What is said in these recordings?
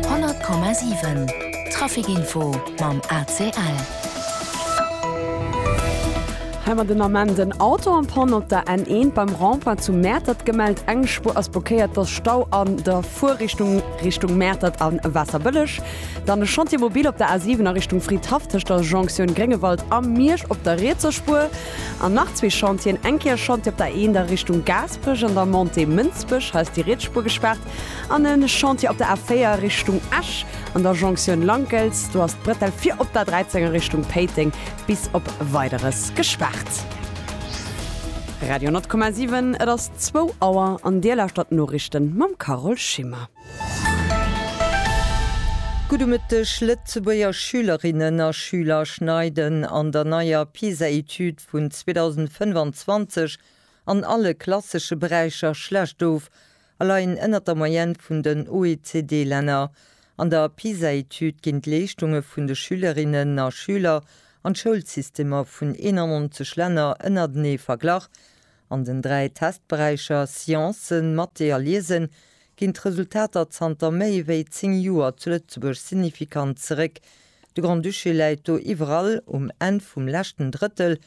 100,7 Traficinfo mam ACL. Hei mer den Ament en Auto am Panne op der N1 beim Rond-point zu Mäertert gemellt. Eng Spuer ass blockéiert, et ass Stau an der Fuerrichtung Richtung Mäertert an Waasserbëlleg. Dann e Chantier mobil op der A7 a Richtung Fridhaff tëscht der Jonktioun Gréngewald a Miersch op der rietser Spuer. An nach zwee Chantieren, eng Kéier e Chantier op der A1 a Richtung Gaasperech an der Montée Mënsbech, hei ass déi riets Spuer gespaart. An e Chantier op der A4 Richtung Esch, an der Jonktioun Lankels. Do ass d'Bretell fir op der 13 a Richtung Péiteng bis op Weideres gespaart. Radio 10,7 Et ass zwou Auer an Dir lauschtert d'Noriichten mam Carole Schimmer. Gudde Mëtteg, Lëtzebuerger Schülerinnen a Schüler schneiden an der neier PISA-Etüd vun 2025 an alle klassesche Beräicher schlecht of, a leien ënnert der Moyenne vun den OECD-Länner. An der PISA-Etüd ginn d'Leeschtunge vun de Schülerinnen a Schüler an d'Schoulsystemer vun 91 Länner ënnertenee verglach. An den dräi Testberäicher Sciences, Mathé a Liesen ginn d'Resultater zanter méi ewéi zéng Joer zu Lëtzebuerg signifikant zeréck. De Grand-Duché läit do iwwerall um Enn vum leschten Drëttel.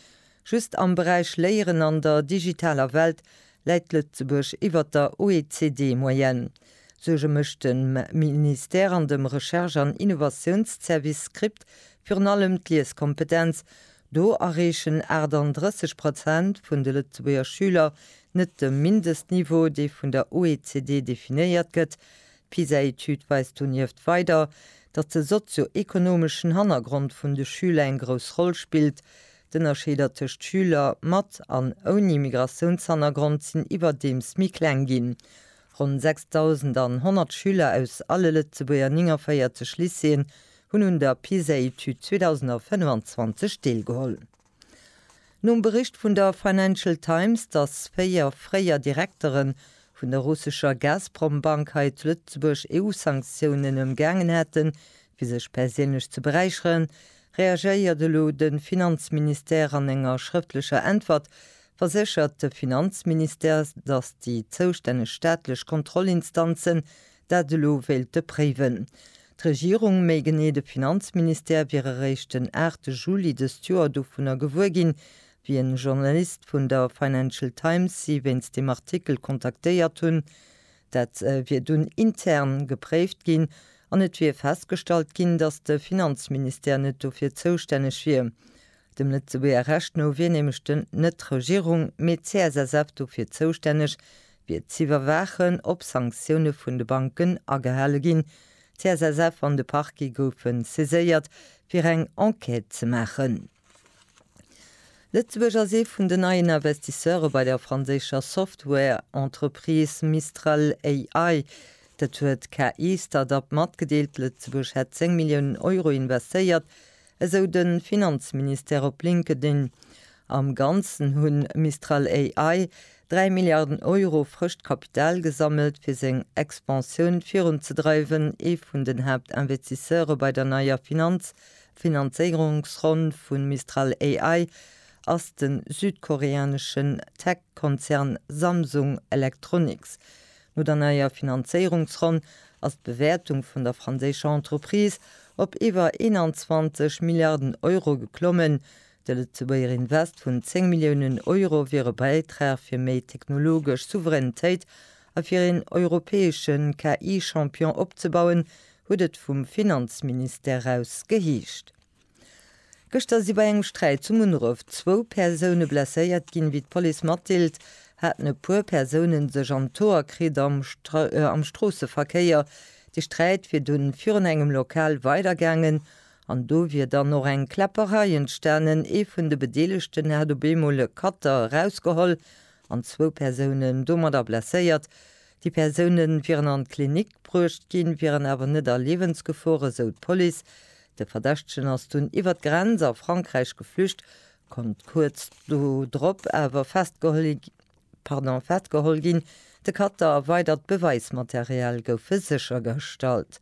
Just am Beräich Léieren an der digitaler Welt Läit Lëtzebuerg iwwert der OECD-Moyenne? Suerge mécht dem Ministère an dem Recherche an Innovatiounszervice, Script, virun allem d'Lieskompetenz. Do erreechen 38 Prozent vun de Lëtzebuerger Schüler net de Mindestniveau, dee vun der OECD definéiert gëtt. D'PISA-Etüd weist donieft weider, datt de sozio-ekonomeschen Hannergrond vun de Schüler eng grouss Roll spillt. D'Ënnerscheeder tëscht Schüler mat an ouni Migratiounshannergrond sinn iwwerdeems méi kleng ginn. Ronn 6.100 Schüler aus alle Lëtzebuerger 49 Lycéeën hunn un der PISA-Etüd 2025 deelgeholl. Nom Bericht vun der Financial Times, dass véier fréier Direktere vun der russescher Gazprom-Bank hei zu Lëtzebuerg EU-Sanktiounen ëmgaangen hätten, fir sech perséinlech ze beräicheren, Reagéiert elo de Finanzministère? An enger schrëftlecher Äntwert verséchert de Finanzministère, datt déi zoustänneg staatlech Kontrollinstanzen dat elo wéilte préiwen. D'Regierung, méi genee de Finanzministère, wier eréischt den 8 Juli dëst Joer dovunner gewuer ginn, wéi en Journalist vun der Financial Times si wéinst deem Artikel kontaktéiert hunn, Dat wier dunn intern gepréift ginn an et wier festgestallt ginn, datt de Finanzministère net dofir zoustänneg wier. Dem Lëtzebuerger Recht no wier nämlech den, net d'Regierung, mee d'CSSF dofir zoustänneg, wier z'iwwerwaachen, ob Sanktioune vun de Banken agehale ginn. D'CSSF an de Parquet goufe saiséiert, fir eng Enquête ze maachen. Lëtzebuerg ass ee vun den neien Investisseure bei der franséischer Software-Entreprise Mistral AI. Dat huet d'KI-Start-up matgedeelt. Lëtzebuerg hätt 10 Milliounen Euro investéiert, esou de Finanzministère op LinkedIn. Am Ganzen hu Mistral AI 3 Milliarden Euro frëscht Kapital gesammelt, fir seng Expansioun virunzedreiwen. Ee vun den Haaptinvestisseure bei der neier Finanz D'Finanzéierungsronn vun Mistral AI ass de südkoreaneschen Tech-Konzern Samsung Electronics. No der neier Finanzéierungsronn ass d'Bewäertung vun der franséischer Entreprise op iwwer 21 Milliarden Euro geklommen. De Lëtzebuerger Invest vun 10 Milliounen Euro wier e Bäitrag fir méi technologesch Souveränitéit a fir een europäesche KI-Champion opzebauen, huet et vum Finanzministère aus geheescht. Gëschter si bei engem Sträit zu Munneref zwou Persoune blesséiert ginn. Wéi d'Police matdeelt, haten e puer Persoune sech an d'Hoer kritt am Stroosseverkéier. De Sträit wier dunn virun engem Lokal weidergaangen an do wier dann och eng Kläpperei entstanen. Ee vun de Bedeelegten hat op eemol e Cutter erausgeholl an zwou Persounen domadder blesséiert. Déi Persoune wieren an d'Klinik bruecht ginn, wieren awer net a Liewensgefor, esou d'Police. De Verdächtegen ass dunn iwwer d'Grenz a Frankräich geflücht, konnt kuerz dodrop awer festgeholl ginn. De Cutter a weidert Beweismaterial goufe séchergestallt.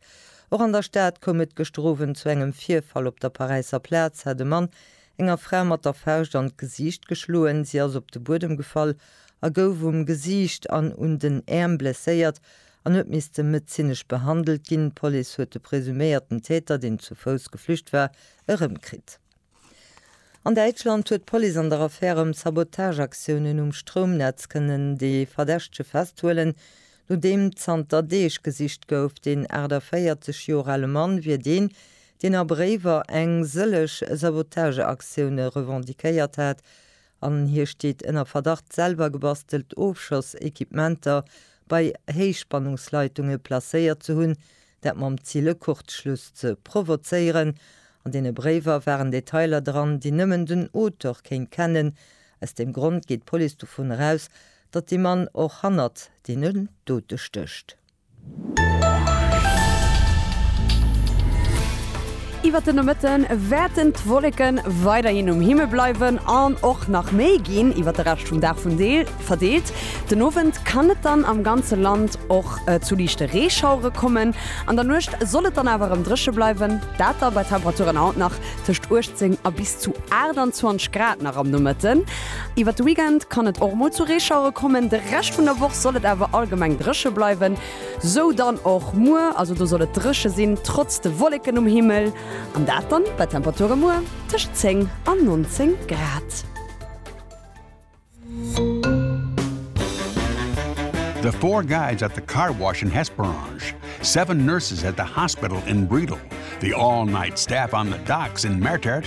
Och an der Stad koum et gëschter Owend zu engem Virfall. Op der Paräisser Plaz hat e Mann enger Fra mat der Fauscht an d'Gesiicht geschloen. Si ass op de Buedem gefall a gouf um Gesiicht an un den Äerm blesséiert an huet misste medezinesch behandelt ginn. D'Police huet de presuméierten Täter, deen zu Fouss geflücht war, erëmkritt. An Däitschland huet d'Police an der Affär ëm Sabotageaktiounen um Stroumnetz kënnen de Verdächtege festhuelen. Nodeem zanter Deeg gesicht gouf, deen 48 Joer ale Mann wier deen, deen a Bréiwer eng sëlleg Sabotageaktioune revendiquéiert hat an hie steet ënner Verdacht, selwer gebastelt Ofschoss-Equipementer bei Héichspannungsleitunge placéiert ze hunn, dat mam Zil, e Kurzschluss ze provozéieren. An deene Bréiwer waren Detailer dran, déi nëmmen den Auteur kéint kennen. Aus deem Grond geet d'Police dovun eraus, Datt de Mann och hannert deenen Dote stécht. Iwwert de Nomëtte wäerten d'Wolleke weiderhin um Himmel bleiwen an och nach méi ginn iwwert de Rescht vum Dag verdeelt. Den Owend kann et dann am ganze Land och zu liichte Reeschauere kommen. An der Nuecht soll et dann awer erëm dréche bleiwen, dat da bei Temperaturen haut nach tëscht 18 a bis zu 28 Grad nach am Nomëtten. Iwwer de Weekend kann et och mol zu Reeschauere kommen, de Rescht vun der Woch soll et awer allgemeng dréche bleiwen. Sou dann och muer, also do soll et dréche sinn, trotz de Wolleken um Himmel, an dat dann bei Temperature muer tëscht 10 an 19 Grad. The four guides at the car wash in Hesperange, seven nurses at the hospital in Bredal, the all-night staff on the docks in Mertert,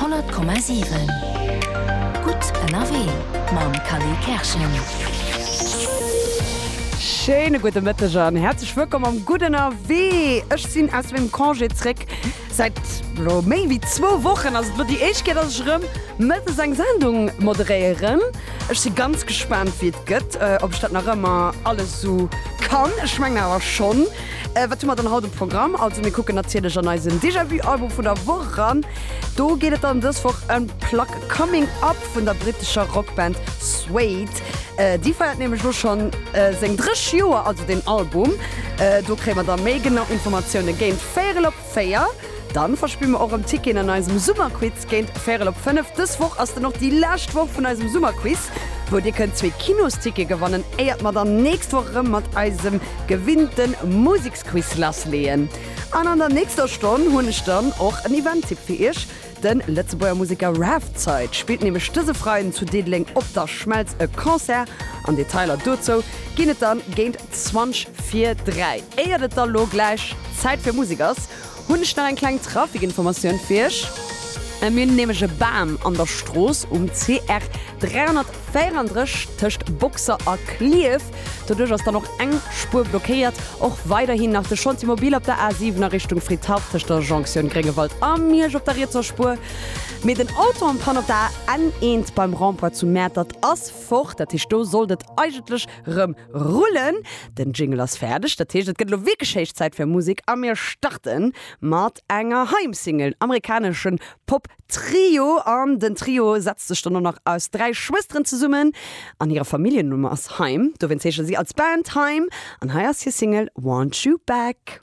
100,7 Gutt ënnerwee mam Kally Kerschen. Schéine gudde Mëtteg an häerzlech wëllkomm am Gutt ënnerwee. Ech sinn aus mengem Congé zréck. Säit elo méi wéi zwou Wochen ass et elo déi éischt Kéier, dass ech erëm mëttes eng Sendung moderéieren. Ech si ganz gespaant, wéi et gëtt, ob ech dat nach ëmmer alles esou kann. Ech mengen awer schonn. Wat hu mer dann haut um Programm? Also mir kucken natierlech an eisen Déjà-vu-Album vun der Woch eran. Do geet et dann dës Woch ëm d'Plack Coming Up vun der brittescher Rockband Suede. Déi feiert nämlech elo schonn seng dréch Joer, also den Album. Do kréie mer da méi genau Informatioune géint véierel op 4, Dann verspille mer och rem Ticketen an eisem Summerquiz géint Véirel op 5. Dës Woch ass dann och déi lescht Woch vun eisem Summerquiz, wou dir kënnt zwee Kinosticketen gewannen, éiert mer dann nächst Woch rem mat eisem gewinnten Museksquiz lassleeën. An an der nächster Stonn hunn ech dann och en Eventtipp fir iech. De Lëtzebuerger Museker Raf Zeit spillt nämlech dëse Freiden zu Diddeleng op der Schmelz e Concert an Detailer dozou ginn et dann géint 20 vir 3. Éiert et da lo gläich Zäit fir Musek ass, hunn ech nach eng kleng Trafikinformatioun fir iech. Mir hunn nämlech e Bam an der Strooss um CR 300. Fair an Dresch tëscht Boxer a Clierf. Doduerch ass dann och eng Spuer blockéiert. Och weiderhin nach de Chantier Mobil op der A7 a Richtung Fridhaff tëscht der Jonktioun Gréngewald a Miersch op der rietser Spuer. Mee den Auto am Panne op der AN1 beim Rond-point zu Mäertert ass fort. Dat heescht do sollt et eigentlech rëm rullen. Den Jingle ass fäerdeg. Dat heescht et gëtt elo wierklech héich Zäit fir Musek a mir starten mat enger Heimsingle, amerikaneschen Pop. Trio an den Trio setzt sech dann och nach aus dräi Schwësteren zesummen an hire Familljennumm ass Haim. Dowéinst heesche si als Band Haim an hei ass hir Single Want You Back.